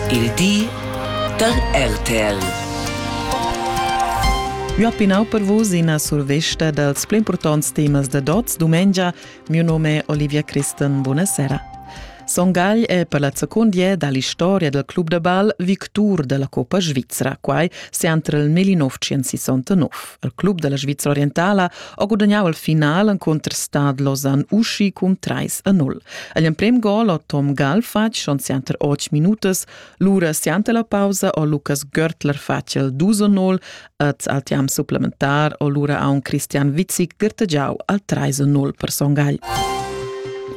Il di da RTL. Io pinau per vus ina survesta dals pli impurtants temas da dots dumengia. Mio nome è Olivia Christen. Buonasera. Son Gagl è per la seconda dall'historia del club da bal victur della Coppa Svizzera, quai sempre nel 1969. Il club dalla Svizra orientala ha gudagnau il final encunter Stad Lausanne uschi cun 3-0. Egl emprem gol ha Tom Gall fatg schon sianter 8 minutas, lura sianter la pausa ha Lukas Görtler fatg il 2-0 et al tiam supplementar ha lura aun Christian Witzik gertegiau al 3-0 per Son Gagl.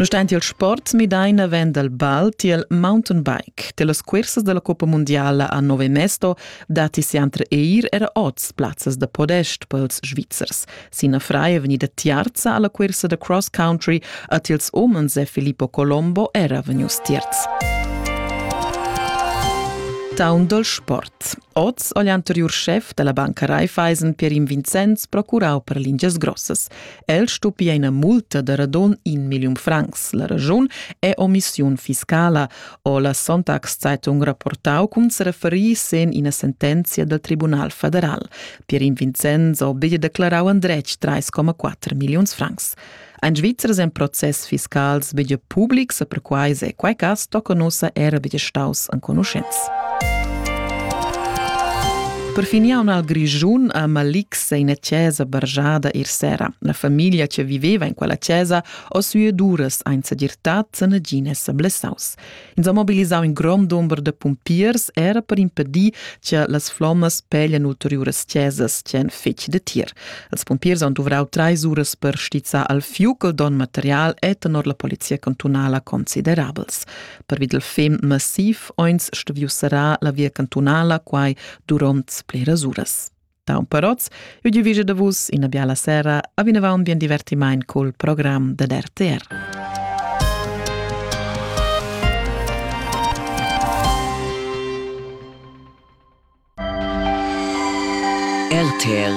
Nonostante il sport Midaina venda il ball tiel mountainbike. Tiel las cursas della Coppa Mondiala a Nove Mesto datti sempre eir era oz plazzas da podest pels Svizzers. Sina frei è vegnida tiarza alla cursa da cross country, a tils omens è Filippo Colombo era vegnius tierz. Town dal sport. Oz ha l'anterior chef della banca Raiffeisen Pierin Vincenz procurau per lingias grossas. El stupia ina multa da radon in million francs. La ragiun è omissiun fiscala. ho la Sonntagszeitung rapportau cun sereferir sen ina sentenzia dal Tribunal federal. Pierin Vincenzo ha declarau endretg 3,4 milliuns francs. Ein Svizzers en process fiscals bege publics e perquai se quai cas tocca nossa era bege staus enconuschents. Per finiaun al Grischun a Malix è ina chiesa bargiada ir sera. La famiglia che viveva in quella chiesa Oz ueduras ein sedirtat sanagines seblessaus. Ins ha mobilisau in grond dumber de pompiers era per impedir che las flommas peglian ulteriuras chesas che ein fetg de tir. Els pompiers han duvrau treis uras per stizzar al fiuc don material e tenor la polizia cantunala considerabels. Per vid il fem massiv eins stuviu serrar la via cantunala quai duront bleras uras. Tau parots, eu divige da vus ina biala sera, a vinavant bien divertimaint col program dad RTR. RTL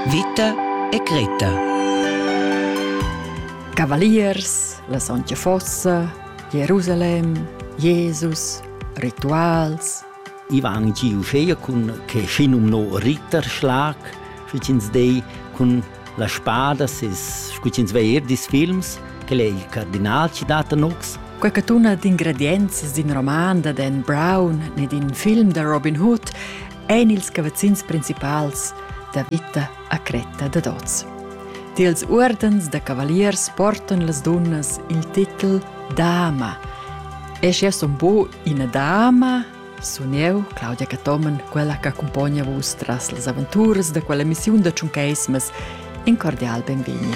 Vita e Greta Cavaliers, la Sontga Fossa, Jerusalem, Jesus, rituals, I van giu schea cun che schinumno Ritterschlag, sche ins dei cun la spada ses scu ins va er dis films, quel è il cardinal ci dat anox. Quella tuna d'ingredienz d'in roman da Dan Brown ne d'in film da Robin Hood ein ils cavazzins principals da vita a cretta da dots. Tiels ordens da cavaliers portan las dunnas il titel Dama. E sche un po Ina dama sun eu, Claudia Cathomen, quella che accumpogna vus tras las aventuras da quella emissiun da Tschuncaismas. In cordial benvegni.